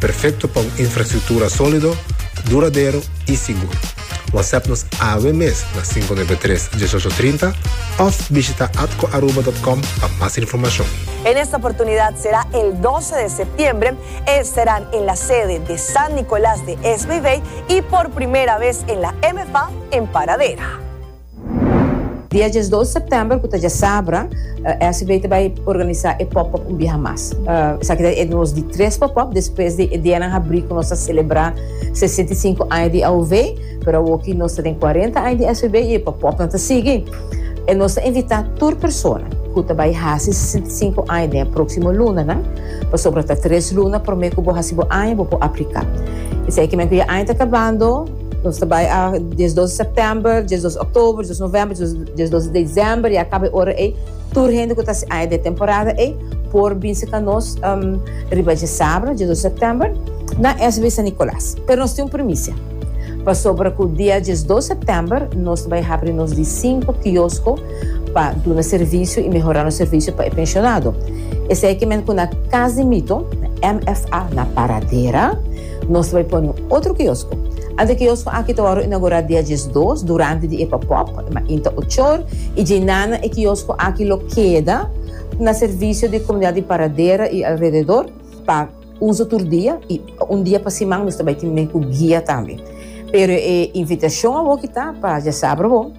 Perfecto pa un infrastructura solido, duradero y sigur. WhatsApp nos awe mes na cinco nuebe tres, dieshocho trinta of bishita atcoaruba.com pa mas informacion. En esta oportunidad será el doce de septiembre, estarán en la sede de San Nicolás de SBV y por primera vez en la MFA en Paradera. Dia diesdos sèptèmber, ku ta djasabra, SB ta bai organisá e pòp-òp un biaha mas. Esaki ta e nos di tres pòp-òp despues di e dianan habrí ku nos a selebrá sesenta i sinku aña di AOV, pero awoki nos ta den kuarenta aña di SB i e pòpòpnan ta sigui. E nos ta invitá tur persona ku ta bai hasi sesenta i sinku aña den e próksimo lunanan, pasobra ta tres luna promé ku bo hasi bo aña bo por apliká. Esei kinan ku ya aña ta kabando. Nos ta bai a diesdos di sèptèmber, diesdos di òktòber, diesdos di novèmber, diesdos di desèmber i a kaba e ora ei tur hende ku ta hasi aña den temporada ei por bin sika nos riba dje sabra, diesdos di sèptèmber, na SW San Nicolas. Pero nos tin un primisia pasobra ku dia diesdos di sèptèmber nos ta bai habri nos di sinku kiosko pa duna servisio i mehorá nos servisio pa e penshonado. Esei kimen ku na Kas di Mito, na MFA, na Paradera. Nos ta bai pone un otro kiosko. Ante kiosko aki ta wòrdu inaugurá dia diesdos durante di e pòpòp, ma inta ochor i djeinánan e kiosko aki lo keda na servisio di komunidat di Paradera i alrededor pa uso tur dia i un dia pa siman nos ta bai tin binia ku guia tambe. Pero e invitashon awoki ta pa djasabra bo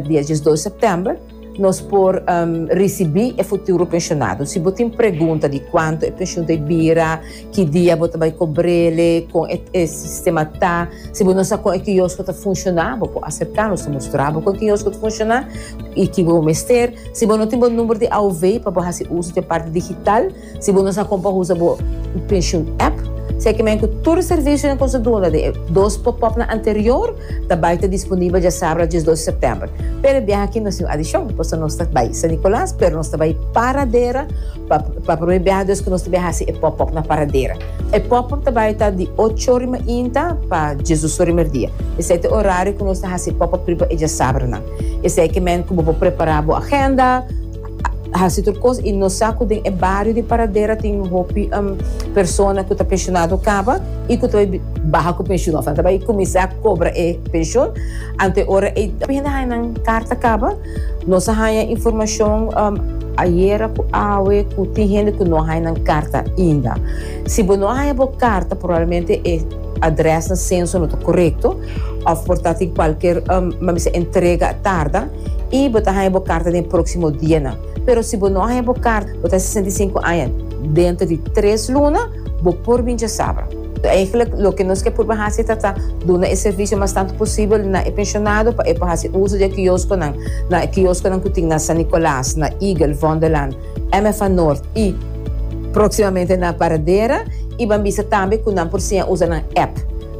dia diesdos di sèptèmber. Nos por um, risibi e futuro pensionado. Si bo tin pregunta di cuanto e pension ta bira, ki dia bo ta bai cobrele, con e, e sistema ta, si bo no sa con e kiosco ta funciona, bo por acercanos ta mostra bo con e kiosco ta funciona y ki bo mester. Si bo no tin bo number di AOV pa bo haci uso di e parte digital, Si bo no sa kon pa usa bo penshun app, sekimen ku tur e servisionan ku nos a duna den e dos popòpnan anterior ta bai ta disponibel dja sábado dies dos di sèptèmber. Pero e biaha aki no sin un adishon, pasobra nos ta bai San Nikòlàs, pero nos ta bai Paradera pa pa promé biaha dus ku nos ta biaha hasi e popòp na Paradera. E popòp ta bai ta di ocho ora mainta pa dies dos ora di merdia. Esei ta e orario ku nos ta hasi e popòp riba e diasábadonan. Esei ke men ku bo por prepará bo agenda. Hasi tur kos i no sa ku den e bario di Paradera tin hopi persona ku ta penshonado kaba i ku ta bai baha ku penshun òf nan ta bai kuminsá kobra e penshon. Ante ora ei hopi hende a haña nan karta kaba. Nos a haña informashon ayera ku awe ku tin hende ku no a haña nan karta ainda. Si bo no a haña bo karta probablemente e adrèsnan senso no ta korekto. Of por ta tin cualkier mabisa entrega a tarda y bo ta haya bo carta den e proximo dianan. Pero si bo no a haya bo carta, bo ta sesenta i sinku aña, dentro di tres luna bo por bin djasabra. Eigenlijk loke nos ke purba haci ta ta duna e servicio mas tantu posibel na e pensionado pa e por haci uso di e kiosconan, na e kiosconan cu tin na San Nicolas, na Eagle, Vondelland, MFA Noord y proximamente na Paradera y ban bisa tambe cu nan por siña usa nan app.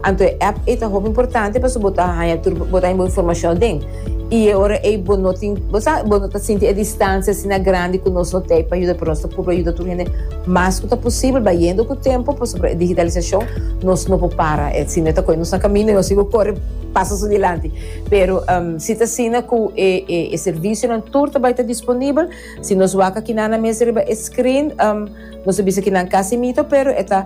Anto e app ei ta hopi importante pasobra bo ta haña tur bo ta haña bo informashon aden. I e ora ei bo no tin, bo sa, bo no ta sinti e distansia asina grandi ku nos no t'ei pa yuda, pero nos ta purba yuda tur hende mas ku ta posibel, bayendo ku tempu pasobra e digitalisashon nos no por para e, sino e ta kohe nos na kaminda i nos sibi kore paso su dilanti. Pero si ta asina ku e e servisionan tur ta bai ta disponibel, si nos wak aki nan na mes riba e screen nos ta bisa ki nan kasi mito pero e ta.